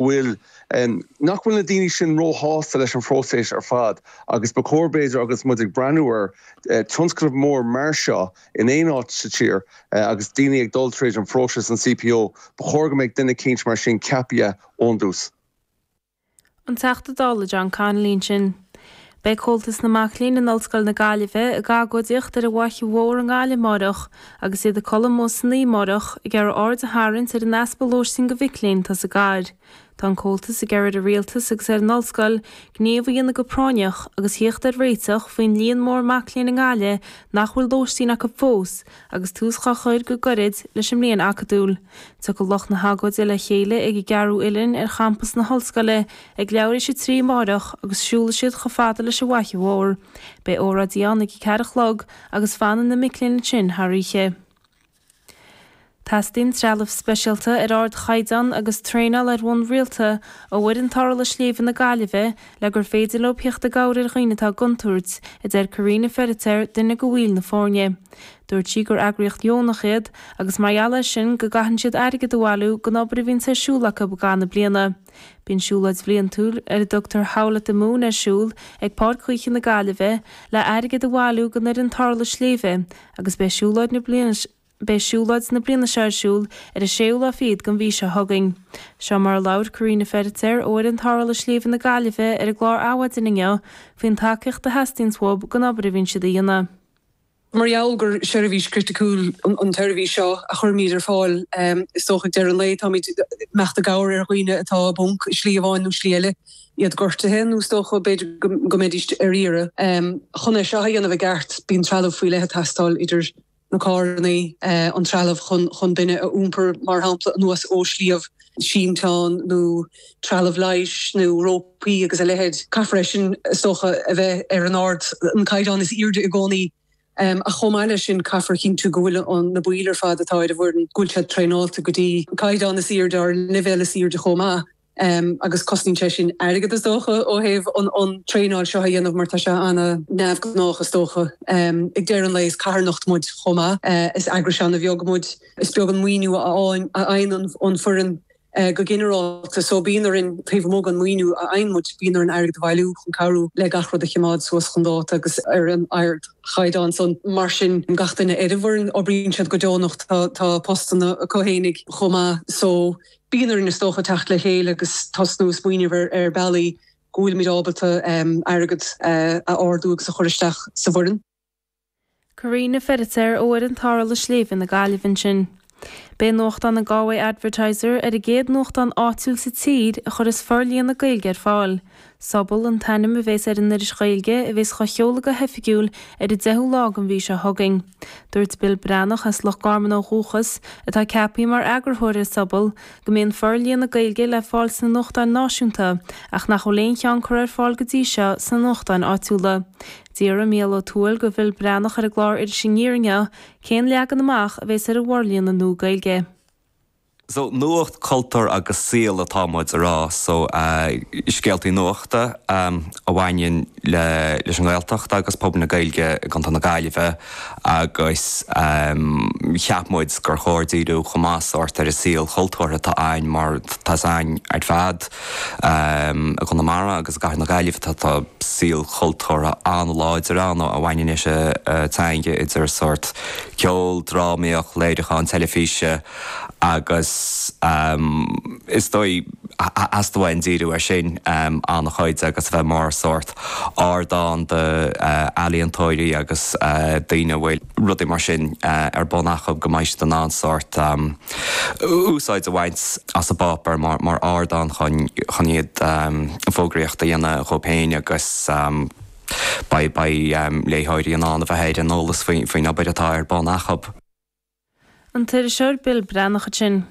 bhfuil, nach bhfuil na daoine sin róshásta leis an phróiseas ar fad agus ba chóir b'fhéidir agus muid ag breathnú ar tionscnamh mór mar seo in aon áit sa tír agus daoine ag dul tríd an phróiseas an CPO, ba chóir go mbeadh duine eicínt mar sin ceapaithe ón dtús. An Teachta Dála John Connolly ansin. Beidh Comhaltas na Mac Léinn in Ollscoil na Gaillimhe ag agóidíocht ar an bhFaiche Mhór i nGaillimh amárach agus iad ag codladh amuigh san oíche amárach ag iarraidh aird a tharraingt ar an easpa lóistín do mhic léinn sa gcathair. Tá an Comhaltas ag iarraidh ar an Rialtas agus ar an Ollscoil gníomh a dhéanamh go práinneach agus theacht ar réiteach faoin líon mór mac léinn i nGaillimh nach bhfuil lóistín acu fós agus tús dhá chur go gairid leis an mbliain acadúil. Tiocfaidh lucht na hagóide le chéile ag an gCearnóg Uilleann ar champas na hOllscoile i ag leathuair tar éis a trí amáireach agus siúlfaidh siad chomh fada leis an bhFaiche Mhór. Beidh óráidí ann ag a ceathair a chlog agus fanfaidh na mic léinn ansin thar oíche. Teastaíonn trealamh speisialta ar ard chaighdeán agus traenáil ar bhonn rialta ó fhoireann tarrthála sléibhe na Gaillimhe le gur féidir leo theacht i gcabhair ar dhaoine atá i gcontúirt, a deir Karina Feiritéar, duine de bhaill na foirne. Dúirt sí gur eagraíocht dheonach iad agus mar gheall air sin go gcaitheann siad airgead a bhailiú don obair a bhíonns ar siúl acu i gcaitheamh na bliana. Bíonn siúlóid bhliantúil ar a dtugtar Howl at the Moon ar siúl ag Páirc Ghaoithe na Gaillimhe le airgead a bhailiú don fhoireann tarrthála sléibhe agus beidh siúlóid na bliana Beidh siúlóid na bliana seo ar siúl ar an séú lá fichead den mhí seo chugainn. Seo mar a labhair Karina Feiritéar ó fhoireann tarrthála sléibhe na Gaillimhe ar an gclár Adhmhaidin inniu faoin tacaíocht a theastaíonns uathub don obair a bhíonn siad a dhéanamh. Mar gheall gur seirbhís chriticiúil an tseirbhís seo a chuirimid ar fáil, is dócha, ag deireadh an lae, táimid ag imeacht i gcabhair ar dhaoine atá i bponc i slí amháin nó slí eile, iad gortaithe nó is dócha, b'fhéidir, go mbeidís ar iarraidh. Chun é seo a dhéanamh i gceart, bíonn trealamh faoi leith ag teastáil, idir na carranna, an trealamh chun duine a iompar, mar shampla, anuas ó shliabh, sínteán nó trealamh leighis nó rópaí agus a leithéid. Caithfear é sin, is dócha, a bheith ar an ord, an caighdeán is airde i gcónaí ach chomh maith leis sin caithfear a chinntiú go bhfuil na baill ar fad atá ar an bhfoireann, go bhfuil siad traenáilte go dtí an caighdeán is airde, ar an leibhéal is airde chomh maith agus cosnaíonn sé sin airgead is dócha ó thaobh an traenáil seo a dhéanamh mar tá sé an-neamhghnách is dócha. Ag deireadh an lae is carthanacht muid chomh maith, is eagras an-bheag muid. Is beag an maoiniú a fhaigheann an foireann go ginearálta so bíonn orainn, taobh amuigh den mhaoiniú a fhaigheann muid, bíonn orainn airgead a bhailiú chun cabhrú le gach rud a choimeád suas chun dáta agus ar an ardchaighdeán. So mar sin gach duine ar an bhfoireann, oibríonn siad go deonach, tá postanna acu fhéinigh chomh maith. So bíonn orainn is dócha teacht le chéile agus tosnú ag smaoineamh ar bealaí go bhfuilimid ábalta airgead a ardú agus a chur isteach sa bhfoireann. Karina Feiritéar ó fhoireann Tarrthála Sléibhe na Gaillimhe ansin. Beidh nuachtán an Galway Advertiser ar an gcéad nuachtán áitiúil sa tír a chuirfeas forlíonadh Gaeilge ar fáil. Sobal an t-ainm a bheas ar an iris Ghaeilge a bheas á sheoladh go hoifigiúil ar an 10ú lá den mhí seo chugainn. Dúirt Bill Breathnach, as Loch Garman ó dhúchas, atá ceaptha mar eagarthóir ar Sobal, go mbíonn forlíonadh Gaeilge le fáil sna nuachtáin náisiúnta ach nach bhfuil aon cheann curtha ar fáil go dtí seo sna nuachtáin áitiúla. D'fhiafraigh Micheál Ó Tuathail de Bill Breathnach ar an gclár Iris Aniar inniu, cén leagan amach a bheas ar an bhforlíonadh nua Gaeilge? So, nuacht, cultúr agus saol atá muid a rá, so scéaltaí nuachta a bhaineann leis an nGaeltacht agus pobal na Gaeilge i gContae na Gaillimhe. agus cheap muid gur chóir díriú chomh maith sórt ar an saol cultúrtha atá ann mar tá a fhios againn ar fad i gConamara agus i gcathair na Gaillimhe atá, tá saol cultúrtha an-láidir ann a bhaineann leis an teanga idir sórt ceol, drámaíocht, léiriúcháin teilifíse agus is dóigh theastaigh uainn díriú air sin an-chuid agus a bheith mar sórt. ardán do ealaíontóirí agus daoine a bhfuil rudaí mar sin ar bun acu go mbeidh siad in ann sórt úsáid a bhaint as an bpáipéar mar ardán chun iad fógraíocht a dhéanamh dóibh féin agus beidh beidh léitheoirí in ann a bheith ar an eolas faoin obair atá ar bun acu. An t-iriseoir Bill Breathnach ansin.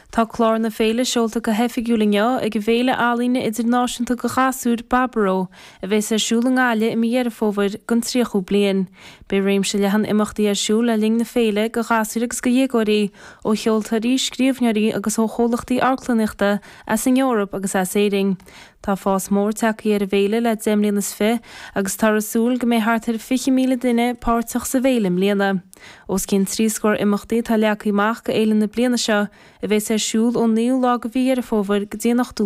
Tá clár na féile seolta go hoifigiúil inniu ag an bhféile ealaíon idirnáisiúnta do ghasúir, Baboró, a bheas ar siúl i nGaillimh i mí Dheireadh Fómhair don 30ú bliain. Beidh réimse leathan imeachtaí ar siúl le linn na féile do ghasúir agus do dhéagóirí, ó cheoltóirí, scríbhneoirí agus ó chomhlachtaí amharclannaíochta as an Eoraip agus as Éirinn. Tá fás mór tagtha ar an bhféile le deich mbliana is fiche agus táthar ag súil go mbeidh thart ar 20,000 duine páirteach sa bhféile i mbliana. Os cionn trí scór imeachtaí atá leagtha amach d'fhéile na bliana seo, a bheas ar siúl ón 9ú lá de mhí Dheireadh Fómhair go dtí an 18ú lá